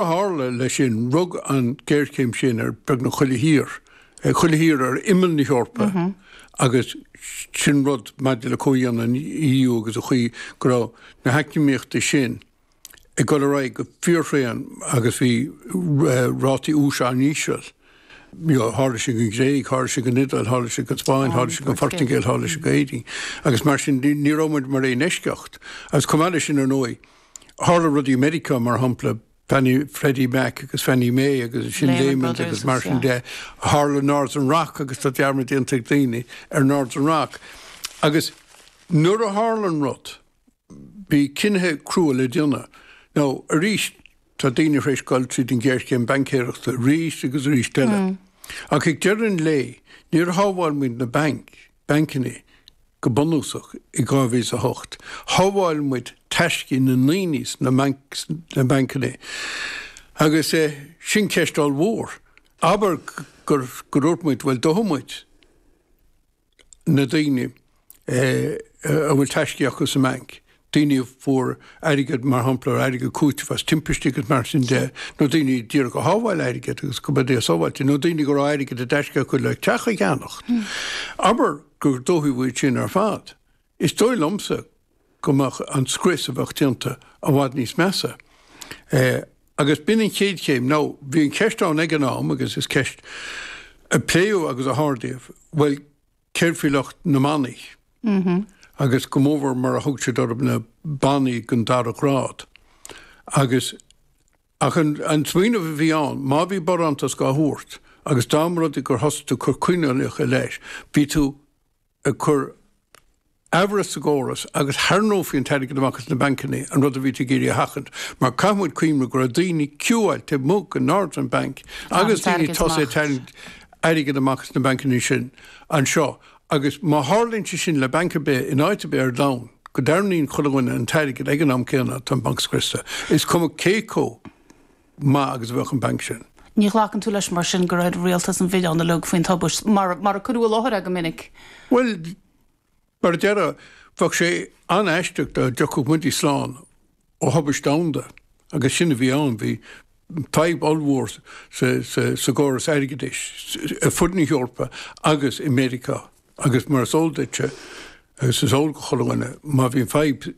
tharla leis sin, rug an géarchéim sin ar beagnach chuile thír, chuile thír ar imeall na hEorpa, agus sin rud, maidir le comhdhéanamh an EU agus an chaoi go raibh na heacnamaíochtaí sin ag dul ar aghaidh go fíorthréan agus bhí rátaí úis an-íseal, tharla sé don Ghréig, tharla sé don Iodáil, tharla sé don Spáinn, tharla sé don Phortaingéil, tharla sé d'Éirinn, agus mar sin ní raibh muid mar aon eisceacht. Agus chomh maith leis sin ar ndóigh, Tharla rudaí i Meiriceá, mar shampla, Fannie, Freddie Mac agus Fannie Mae agus ansin Lehman agus mar sin de. Tharla Northern Rock agus tá dearmad déanta ag daoine ar Northern Rock. Agus nuair a tharlaíonn rud, bhí cinnithe crua le déanamh. Nó arís, tá daoine tar éis dul tríd an ghéarchéim baincéireachta arís agus arís eile. Ach ag deireadh an lae, níor shábháil muid na bainc. bainceannaí, go bunúsach, i 2008. Shábháil muid taiscí na ndaoine sna bainceannaí, agus sin ceist ollmhór. Abair gur dhúirt muid, bhuel, dófaidh muid na daoine a bhfuil taiscí acu sa mbainc, daoine a fuair airgead, mar shampla, airgead cúitimh as timpistí agus mar sin de, nó daoine a bhí ag iarraidh a shábháil airgead agus go mbeadh sé sábháilte, nó daoine go raibh airgead i dtaisce acu le teach a cheannacht. Abair go ndódh muid sin ar fad, is dóigh liomsa go mbeadh an scrios a bheadh déanta i bhfad níos measa. Agus b'in an chéad chéim. Now, bhí an cheist ann ag an am, agus is ceist a pléadh agus a hardaíodh, bhuel, céard faoi lucht na mbannaí? Agus go mórmhór mar a thug siad orthu na bannaí den dara grád. Agus ach an smaoineamh a bhí ann, má bhí barántas á thabhairt agus dá mba rud é gur thosaigh tú ag cur coinníollacha leis, bhí tú ag cur Amhras sa gcóras agus tharraingeofaí an t-airgead amach as na bainceannaí, an rud a bhíothas ag iarraidh a sheachaint, mar caithfidh muid cuimhniú go raibh daoine ag ciúáil taobh amuigh de Northern Bank agus daoine tosaithe ag tarraingt airgead amach as na bainceannaí sin anseo agus má tharlaíonn sé sin le banc ar bith in áit ar bith ar domhan, go dtarraingíonn chuile dhuine an t-airgead ag an am céanna, tá an banc scriosta, is cuma cé chomh maith agus a bheadh an banc sin. Ní ghlacann tú leis mar sin go raibh rialtas an mhilleáin ná lag faoin tubaist, mar a cuireadh i láthair iad go minic? Bhuel, Ar deireadh, bheadh sé an-aisteach dá dtiocfadh muid slán ó thubaist domhanda, agus sin a bhí ann. Bhí fadhb ollmhór sa gcóras airgeadais ar fud na hEorpa agus i Meiriceá, agus mar is eol duitse, agus is eol go chuile dhuine, má bhíonn fadhb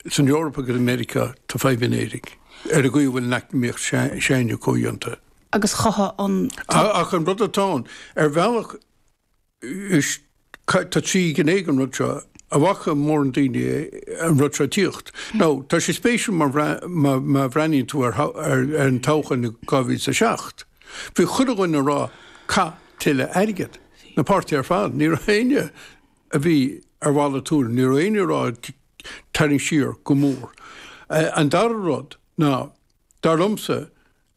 san Eoraip agus i Meiriceá, tá fadhb in Éirinn, ar an gcaoi a bhfuil an eacnamaíocht s'againne comhdhéanta. Agus chothaigh an. Ach an rud atá ann, ar bhealach, Tá trí ghné ag an rud seo. An bhfaca mórán daoine an rud seo ag tíocht. Now tá sé spéisiúil mar má bhreathnaíonn tú ar an todhchaí in 2007. Bhí chuile dhuine ag rá caith tuilleadh airgid. Na páirtithe ar fad. Ní raibh éinne a bhí ar mhalairt tuairim. Ní raibh éinne ag rá tarraing siar go mór. An dara rud ná, dar liomsa,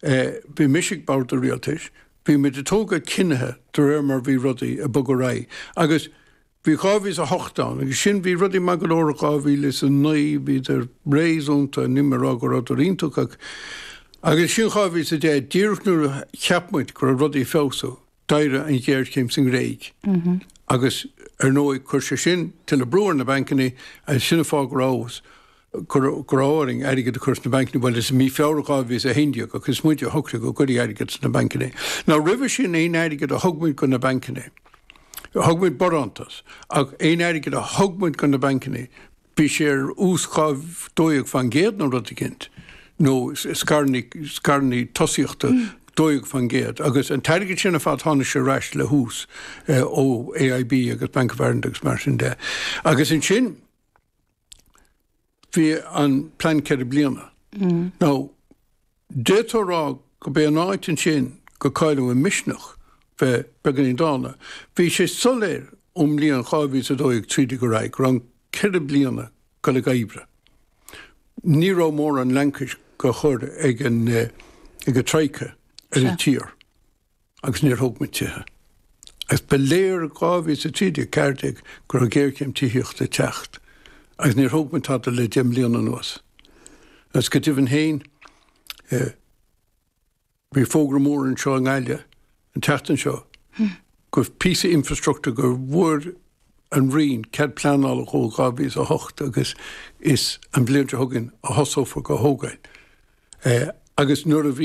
é, bhí mise ag bord an rialtais, bhí muid ag tógáil cinnithe de réir mar bhí rudaí ag bogadh ar aghaidh. Agus bhí 2008 ann, agus ansin, bhí rudaí maith go leor in 2009, bhíodar réasúnta, níl mé ag rá go rabhadar iontach, ach, agus ansin 2010, díreach nuair a cheap muid go raibh rudaí ag feabhsú, D'éirigh an ghéarchéim sa nGréig, agus ar ndóigh chuir sé sin tuilleadh brú ar na bancanna, agus sin an fáth go raibh fhios agam go raibh orainn airgead a chur sna bancanna. Bhuel, is i mí Feabhra 2011 agus is muide a shocraigh go gcuirfí airgead sna bancanna. Now roimhe sin aon airgead a thug muid do na bancanna, thug muid barántas, ach aon airgead a thug muid do na bancanna, Bhí sé ar ús 12 faoin gcéad nó rud eicínt, nó scaireanna tosaíochta 12 faoin gcéad. Agus an t-airgead sin ar fad, tháinig sé ar ais le hús ó AIB agus Bank of Ireland agus mar sin de. Agus ansin, bhí an plean ceithre bliana. Now, D'fhéadfá a rá gurb é an áit ansin gur cailleadh an misneach bheith beagainín dána. Bhí sé soléir ón mbliain 2012 tríd go raibh go raibh an ceithre bliana ag goil ag oibriú. Ní raibh mórán laincis dhá chur ag an ag an Troika ar an tír. Agus níor thóg muid tithe. Agus ba léir in 2013 14 go raibh géarchéim tithíochta ag teacht. Agus níor thóg muid tada le deich mbliana anuas. Agus go deimhin féin, eh, bhí fógra mór anseo i nGaillimh an tseachtain seo go píosa infrastruchtúr go bhfuair an Roinn cead pleanála dhó 2008 agus is an bhliain seo chugainn a thosófar dhá thógáil. Eh, agus nuair a bhí